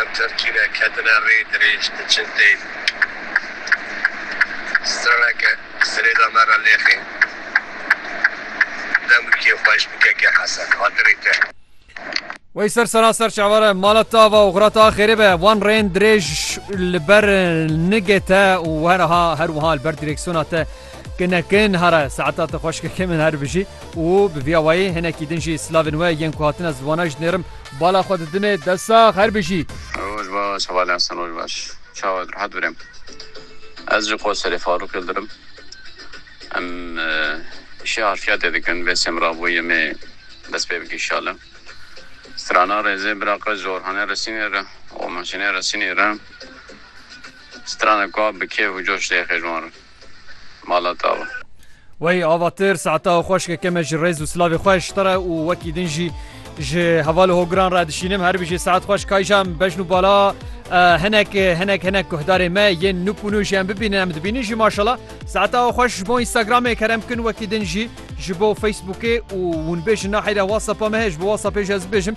Em terkîne ketine rê dirêj diçin têv. Straneke sirêda me re lêxê. Demrikê xweş bi kekê hese xatirê te. Wey ser sera ser çavare mala ta va û xira ta xêrê be. Wan rêên dirêj li ber nigê te û weraha her wiha li ber dirêksiyona te. Kine kin hare saeta te xweş keke min her bijî û bi vîya wayî hinekî din jî silavên we yên ku hatine zivana ji nêrim bala xwe didinê dest sax her bijî. Roj baş Heval Esen roj baş çawa rehat birem ez ji qoserê farûqê li dirim em îşê harfiyatê dikin vê semra bo yemê dest pê bike inşallah strana rêzê bira qe ji orhanê resînê re û maşinê resînê re strana ka bi kêf û coş lê xêj wan re. malata we. Wey avatir saeta xweşke ke me ji rêz û silavê xwe ji te re û wekî din jî ji hevalê hogiran re dişînim her bijî saet xweş kayja min bejn û bala hinek hinek hinek guhdarê me yên nûk û nûj em bibînin em dibînin jî maşala saeta xweş ji bo Instagramê kerem bikin wekî din jî ji bo Facebookê û hûn bêjin nahêre WhatsAppa me heye ji bo WhatsAppê ji ez bibêjim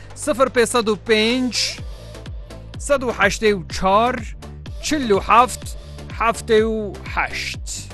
Sifir pê sed û pênc sed û heştê û çar çil û heft heftê û heşt.